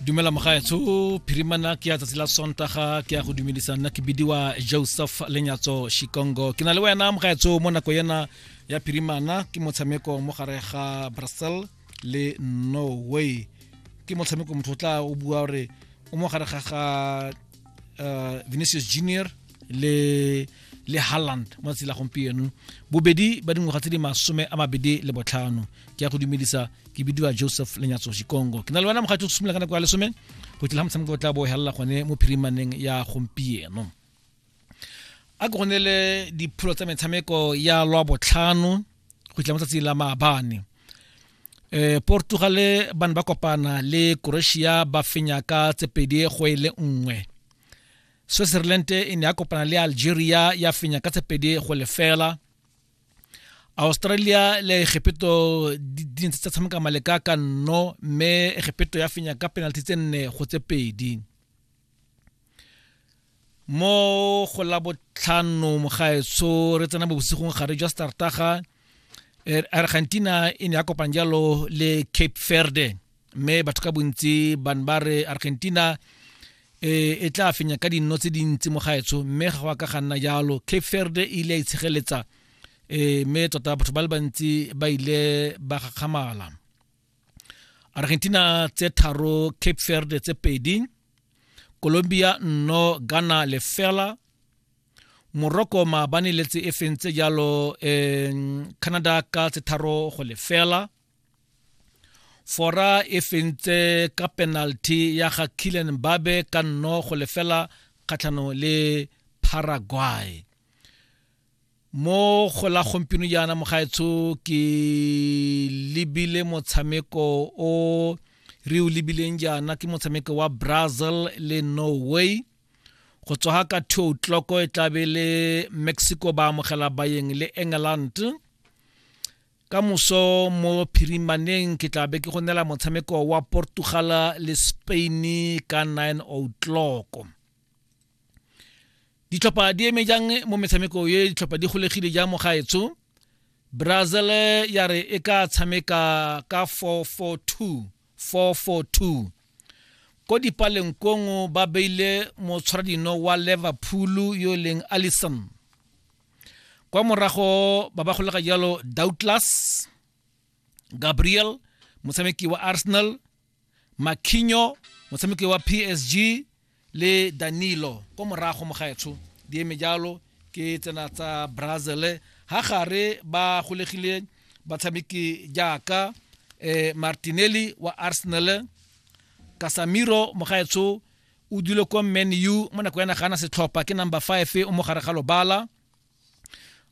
dumela mogaetsho phirimana ke ya tsatsi la sontaga ke ya go dumedisa nna ke bidiwa joseph lenyatso shikongo ke na le wena mogaetsho mo nako ena ya phirimana ke motshameko mo gare ga brazil le norway ke motshameko motho o tla o bua gore o mo gare ga ga uh, vinicius junior le le Haaland mo tsela gompieno bobedi ba dingwaga tse di masome a mabedi le botlhano ke ya go dumedisa ke bidiwa joseph lenyatso shikongo ke na le wena mogatsi o simolola ka nako ya lesome go tla motshameko o tla bo helela gone mo phirimaneng ya gompieno a ke gone le dipholo tsa metshameko ya lwa botlhano go tla mo tsatsi la maabane e portugale ba ne ba kopana le croatia ba fenya ka tse pedi go e le nngwe switzerland e ne ya kopana le algeria ya fenya ka tse pedi go lefela australia le egepeto di ntse tsa tshameka maleka ka nno mme egepeto ya fenya ka penalty tse nne go tse pedi mo go la botlhano mogaetsho re tsena mo bosigong gare jwa startaga er, argentina e ne ya kopang jalo le cape verde mme batho ka bontsi bane ba re argentina e, e tla fenya ka dinno tse dintsi mo gaetsho mme ga go ka ga nna jalo cape verde e ile ya itshegeletsa um mme tota batho ba le bantsi ba ile ba gakgamala argentina tse tharo cape verde tse pedi colombia nno ghana lefela morocco maabane le tse e feng tse jalo um canada ka tse tharo go lefela fora e fentse ka penalty ya ga killen mbabe ka nno go lefela kgatlhanong le paraguay mo go la gompieno jaana mogaetsho ke lebile motshameko o re o lebileng jaana ke motshameko wa brazil le norway go tswa ka two o'clock e tlabe le mexico ba amogela bayeng le england ka moso mo phirimaneng ke tla be ke go nela motshameko wa portugal le spain ka 9 o'clock ditlhopha di eme jang mo metshameko ye ditlhopha di golegile jang mo gaetsho brazil ya re e ka tshameka ka 442 442 ko dipaleng kongo ba beile motshwaradino wa liverpool yo e leng allison kwa morago ba ba golega jalo douglas gabriel motshameki wa arsenal makhinyo motshameki wa psg le danilo ko morago mogaetsho di eme jalo ke tsena tsa brazil ha gare ba golegile batshameki jaaka eh, martinelli wa arsenal kasamiro mogaetsho o dule ko man u mo nako ya nagana setlhopha ke number 5 o mo gare ga lobala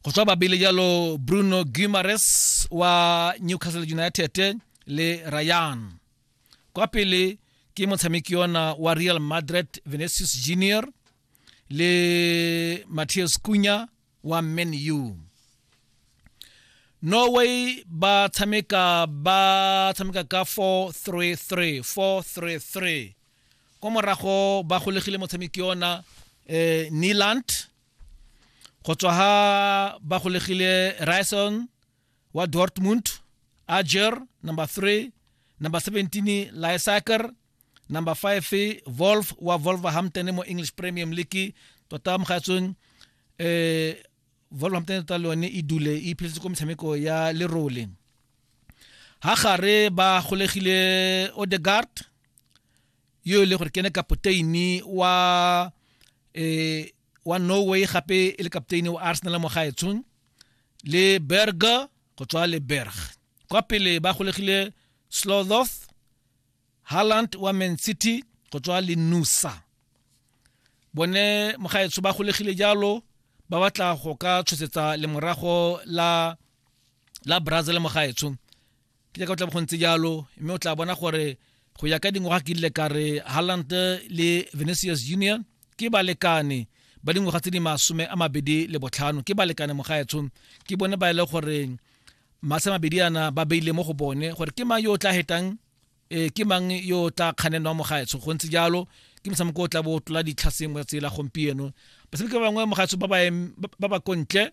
go tswa babele jalo bruno gumares wa newcastle united le ryan kwa pele ke motshameki ona wa real madrid venicius junior le matthias kunya wa man u norway ba tshameka ba tshameka ka 433 433 kwa morago ba golegile motshameki ona eh, niland go tswa ha ba golegile Ryerson wa Dortmund Ajer number 3 number 17 Lysaker number 5 Wolf wa Wolverhampton mo English Premier League tota mogatsong eh Wolverhampton tota le yone e dule e phetse ko metshameko ya lerole ha gare ba golegile Odegaard yo e le gore ke ne kapoteini wa eh wa Norway gape e le kapteini wa Arsenal mo gaetshong le Berger go tswa le Berg kwa pele ba golegile Slodoth Haaland wa Man City go tswa le Nusa bone mogaetsho ba golegile jalo ba batla go ka tshosetsa lemorago la la Brazil mogaetsho ke jaaka o tla bo go ntse jalo mme o tla bona gore go ya ka dingwaga ke ile ka re halland le venicius junior ke balekane ba dingwaga tse di masome a mabedi le botlhano ke balekane mogaetsho ke bone ba e le gore masa mabedi ana ba beile mo go bone gore ke mang yo o tla hetang e ke mang yo o tla kganenwa mogaetsho go ntse jalo ke motshameko o tla bo tlola ditlhaseng mo tsela gompieno batshameki ba bangwe mogaetsho ba ba kontle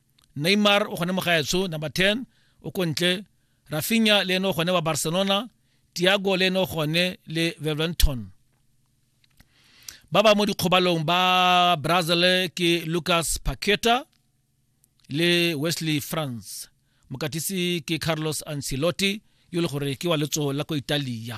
neymar o gone mo gaetsho number 10 o ko ntle rafinya le ene o gone wa barcelona tiago le ene o gone le veventon ba ba mo dikgobalong ba brazil ke lucas paqueta le wesley france mokatisi ke carlos ancelotti yo le gore ke wa letso la ko italia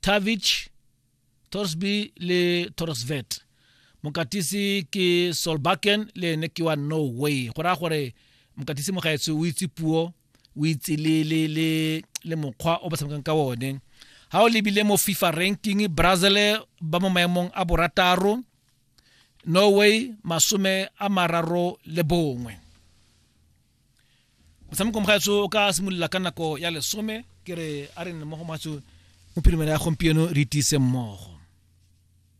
Tavich, Torsby le Torsvet. Mokatisi ke Solbakken le ene ke wa Norway. Go raya gore mokatisi mogaetsho o itse puo, o itse le le le le mokgwa o ba tshamekang ka one. Ha o lebile mo FIFA ranking, Brazil ba mo maemong a borataro, Norway masome a mararo le bongwe. motshameko mogaetso o ka simolola ka nako ya lesome ke re a re nne mo go matso mo phirimela ya gompieno re itise mmogo